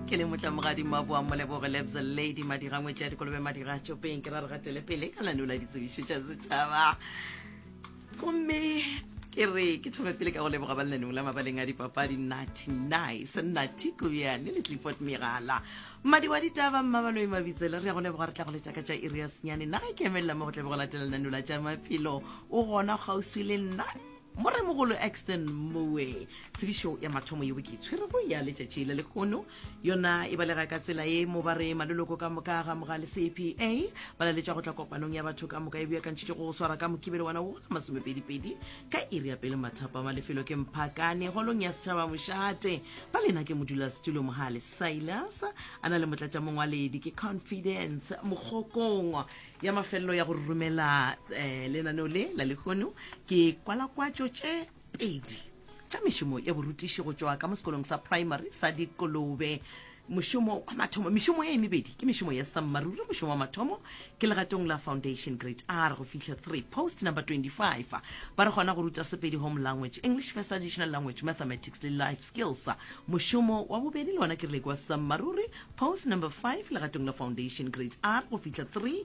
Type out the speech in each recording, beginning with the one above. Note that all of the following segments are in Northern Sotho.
ke le motla mogadimo wa boa moleboge lebza lady madira ngwetši ya dikolobe madira a tšopeng ke ra re gatele pele ka lane o la ditsebišo tša setšhaba gomme ke re ke thome pele ka go leboga ba lenaneng la mabaleng a dipapadi natty nice natty kobiane le clifford megala mmadi wa ditaba mmabaloi mabitsele re ya go leboga re tla go letša ka tša iri ya senyane naga e ke emelela mo go tlebe go latela lenaneo la tša maphelo o gona kgauswi le nna Moremogolo Axton Moe. Tsebišo ya mathomo yeo ke e tshwerego ya letšatši le lekgono yona e balega ka tsela ye mo ba re maloloko ka moka ga moga le CPA ba laletša go tla kopanong ya batho ka moka e beakantšhitšwe go swara ka Mokibelo ngwana wo la masomepedipedi ka iri ya pele mathapama lefelo ke Mphakane holong ya setšhaba mošate ba lena ke modulasetulo Mohale Silas a na le motlatšamongwaledi ke Confidence Mogokong ya mafelelo ya go romela um lenaneo le la lehono ke kwalakwatšo tše pedi tša mešomo ya borutiši go tšwa ka mo sekolong sa primary sa dikolobe mošomo wa mathomo mešomo e mebedi ke mešomo ya sammaruri mošomo wa mathomo ke legatong la foundation grade r go fihla 3 post number 25 ba re gona go ruta sepedi home language english first additional language mathematics le life skills mošomo wa bobedi le ona ke rile kwa sammaruri Post number 5, Legatong la Foundation, Grades R go fihla 3,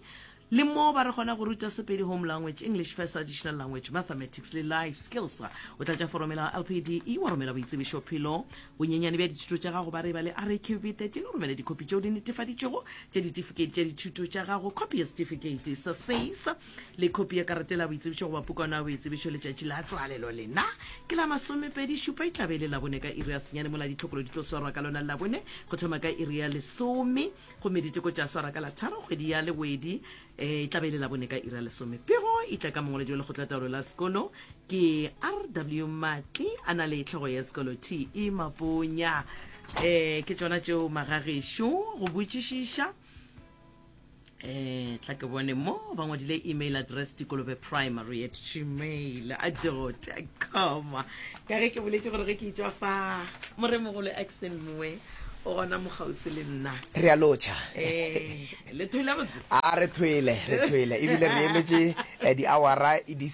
le mo ba re kgona go ruta Sepedi Home Language, English First Additional Language, Mathematics le Life Skills. O tlatša forome la LPDE wa romela boitsebišo phelo, bonyenyane bja dithuto tša gago ba re ba le RAQV 13 o romele dikhopi tšeo di netefaditšwego tša ditifikheiti tša dithuto tša gago, khopi ya setifikeiti sa SACE, le khopi ya karate la boitsebišo goba pukwana ya boitsebišo letšatši la tswalelo lena ke la masomepedi šupa e tlabe e le labone ka iri ya senyane mola ditlhokolo di tlo swarwa ka lona labone go thoma ka iri ya lesome gomme diteko tša swara ka la tharo kgwedi ya lewedi eh, e tlabe e le labone ka iri ya lesome pego e tla ka mongwaledi wa lekgotlataolo la sekolo ke rw matli a na le tlhogo ya sekolo te maponya um ke tsona tšeo magagešo go botšišiša eh tla ke bone mo ba ngwadile email address dikolobe primary at gmail a com ka ge ke boletse gore ge ke itswa fa moremogolo axton moe o gona mogausi le nna re a lotšha eh, le thwele botse a re thwele re thwele ebile re emetše eh, di-awara di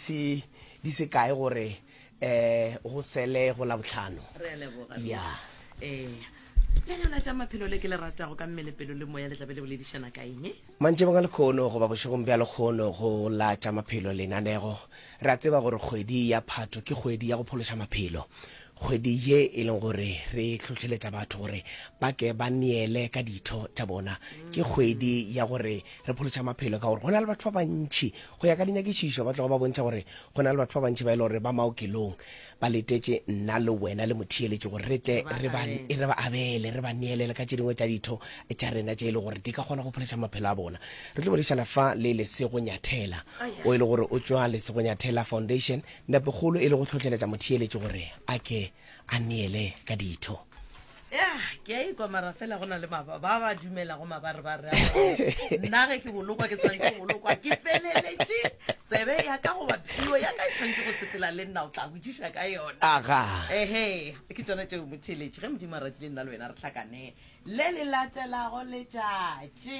se kae gore um go sele go la botlhano re a leboga Ruth. ya ee lenana tša maphelo le ke le ratago ka mmele pelo le moya le tlabe le boledišana ka eng mantšebong a lekgono goba bošegong bja lekgono go la tša maphelo lenanego re a tseba gore kgwedi ya phatho ke kgwedi ya go phološa maphelo kgwedi ye e leng gore re hlohleletša batho gore ba ke ba neele ka ditho tša bona ke kgwedi ya gore re phološa maphelo ka gore go na le batho ba bantšhi Go ya ka dinyakišišo, ba tloga ba bontšha gore go na le batho ba bantši ba e le gore ba maokelong ba letetše nna le wena le motheeletši gore re tle re ba re ba abele, re ba neele le ka tše dingwe tša ditho tša rena tše e le gore di ka kgona go phološa maphelo a bona. Re tlo boledišana fa le Lesego Nyathela, o e le gore o tšwa Lesego Nyathela Foundation, nepokgolo e le go hlohleletša motheeletši gore a ke a neele ka ditho ya ke a ikwa mara fela go na le ba ba dumela go mabare ba re nna ge ke bolokwa ke tshwanetse ke bolokwa ke feleletše tsebe ya ka goba psio ya ka e tshwanetse go sepela le nna o tla botsiša ka yona aga ehe ke tsone tšeo motheletše ge modimo a ratile nna le wena re tlhakane le le latelago letšatši